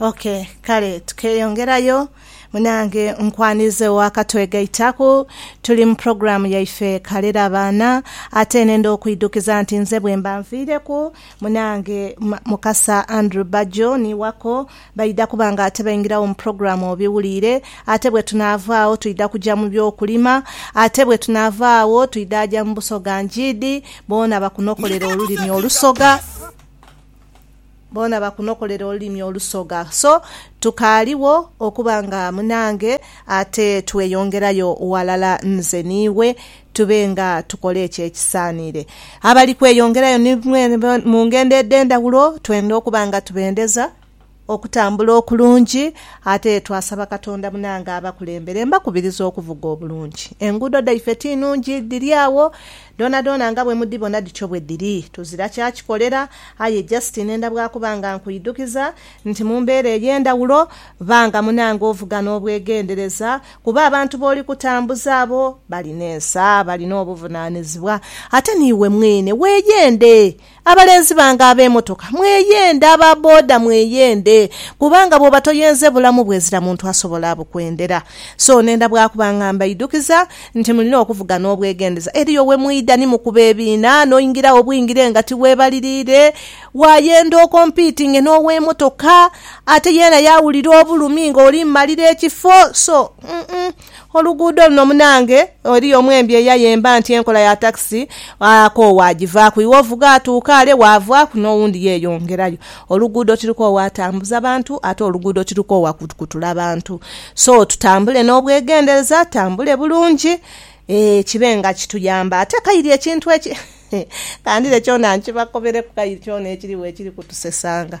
Ok kale tukeyongerayo munange nkwanize wa katwegaitaku tuli mu program yaife kalera abaana ate nenda okwidukiza nti nze bwemba nvireku munange mukasa Andrew Bajjo ni wako baida kuba nga ate baingirawo mu program obiwulire ate bwetunava agho twida kuja mu byokulima ate bwetunava agho twida aja mu busoga njiidi boona bakunokolera olulimi olusoga. Boona bakunokolera olulimi olusoga. So tukaaliwo okuba nga munange ate tweyongerayo ghalala nze n'iwe tube nga tukola ekyo ekisaaniire. Abali kweyongerayo ni mwene mu ngendo edh'endhaghulo twenda okuba nga tubendeza okutambula okulungi ate twasaba Katonda munange abakulembere. Mbakubiriza okuvuga obulungi. Enguudo dhaife ti nnungi, dhiri agho Dhoonadhoona nga bwe mudhibona dhityo bwe dhiri. Tuzira kya kikolera, aye just nenda bwa kuba nga nkuidhukiza nti mu mbeera ey'endhawulo, ba nga munange ovuga n'obwegendereza kuba abantu b'oli kutambuza abo balina ensa, balina obuvunaanizibwa. Ate n'iwe mwene weeyende. Abalenzi bange ab'emotoka mweyende, aba boda mweyende kubanga bwoba toyenze bulamu bwezira muntu asobola abukwendera. So nenda bwakuba nga mbaidhukiza nti mulina okuvuga n'obwegendeza. Eriyo we mwidha ni mukuba ebiina n'oingiragho bwingire nga tiweebaliriire. Waayenda okompiitinge n'ow'emotoka ate yeena yaawulira obulumi ng'oli mu malira ekifo. So, uh-uh. Oluguudo luno munange eriyo omwembi eyayemba nti enkola ya takisi akoowa agivaaku. Iwe ovuga atuuka ale waavaaku n'owundi yeeyongerayo. Oluguudo tirukoowa atambuza bantu ate oluguudo tirukoowa kutula bantu. So tutambule n'obwegendereza, tutambule bulungi ee kibe nga kituyamba. Ate kairi ekintu eki, kandire kyona nkibakobereku kairi kyona ekirigho ekiri kutusesanga.